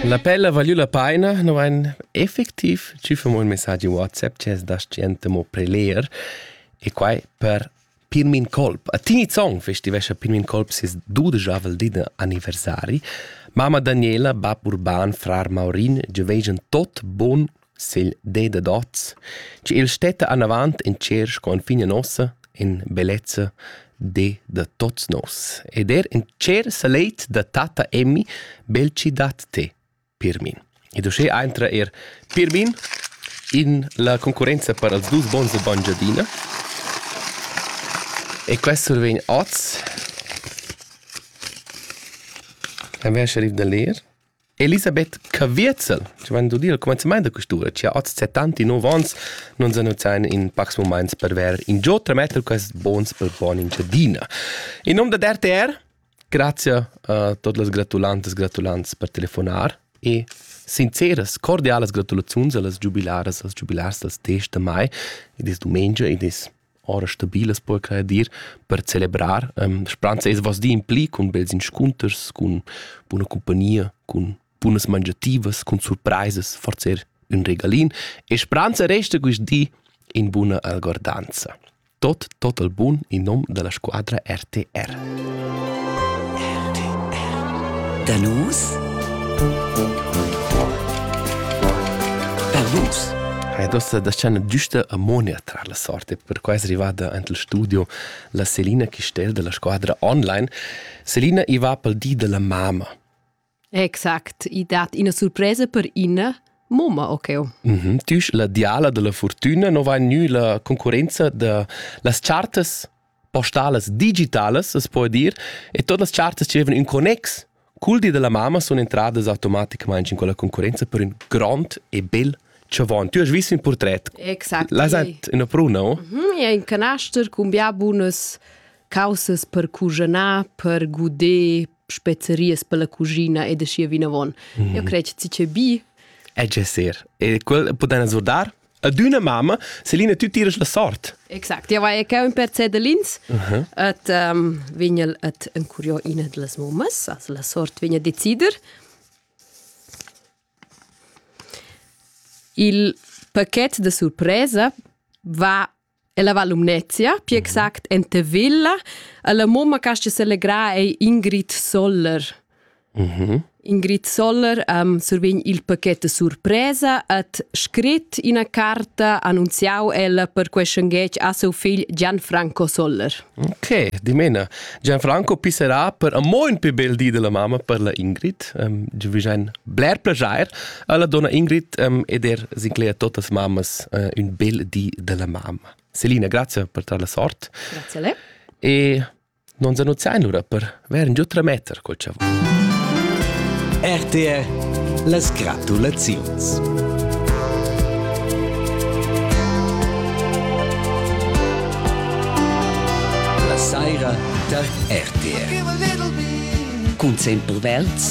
La pella valiu la paina, no vain effectiv tschüffa mo ün messagi WhatsApp chi es da skiente mo preler e quai per Pirmin Kolb. A Tini Zong festivescha Pirmin Kolb ses dudeschavel din anniversari. Mama Daniela, bab urban, frar Maurin giovegian tot bon S'il det dad hoz, chi il stetta anavant in tscherch con figna nossa, in bellezza de da tots nos, ed er in tschert salet da tatta Emmy bel chi dat te, Pirmin. Ed uschè aintra eir Pirmin in la concurrenza per els dus bons e bangiadina. E quest survegn oz. A me ha lascià rir da ler. Elisabeth Caviezel ci vain dudi al cumanzamaint da quistura chi ha hoz 79 ans nun s'annunziain in pacs mumaints per vair ingio trametter quaists bons per buona Engiadina. In nom da RTR, grazia a tot las gratulantas gratulants per telefonar e sinceras, cordialas gratulaziuns a las giubilaras, als giubilars dals 10 da mai, ed es dumengia ed es ora stabilas per quai dir per celebrar ähm, speranza es was di in pli cun bels inscunters cun buna compagnia cun bunas mangiativas cun surprises forzer un regalin e speranza resta quist di in buna algordanza tot tot al bun in nom della squadra RTR Danus Danus Hai dosta da scena giusta a Monia tra la sorte è perquai arrivada ant il studio la Selina Chistel della squadra online. Selina i va pel di della mamma. Exact, i dat ina surpresa per Ina, Moma Okeo. Mm -hmm. Tüsch la diala della fortuna, non va gnü la concurenza da las chartas? postalas digitalas, as po dir, e todas las chartas che avevan ün connex cul di della mamma sun entradas automaticamente in quella concorrenza per ün grond e bel chavon. Tu hast visto un portret. Exact. L'has hat una pruna, o? Mm -hmm, è in canaster con bia bunas causes per cuginar, per guder spezeries per la cucina e da scia vinavon. Mm -hmm. Io credo che ci c'è bi. È gesser. E quel poten azzurdar? ad üna mamma, Selina, tü tiras la sort. Exact, ja vai che un per cedelins, uh -huh. et um, vignel et encuriò ina de las mammas, also la sort vigna decider. Il paquet de surpresa va Ella va Lumnezia, pli exact en Tevilla. La mamma che si selegrar è Ingrid Soller. Mhm. Ingrid Soller um, survegn il pacchet surpresa et scrit ina carta annunziau ella per questiongetg a seu figl Gianfranco Soller. Ok, dimena. Gianfranco pisserà per a mo in più bel di della mamma per la Ingrid. Um, vi ein bler plagiar, Alla donna Ingrid um, ed er sincleia totas mammas uh, un bel di della mamma. Selina, grazie per tala sort. Grazie a lei. E non zanuzzain lura per veren giutra meter col ciavo. RTR las gratulaziuns. La saira tar RTR. Cun sempre velds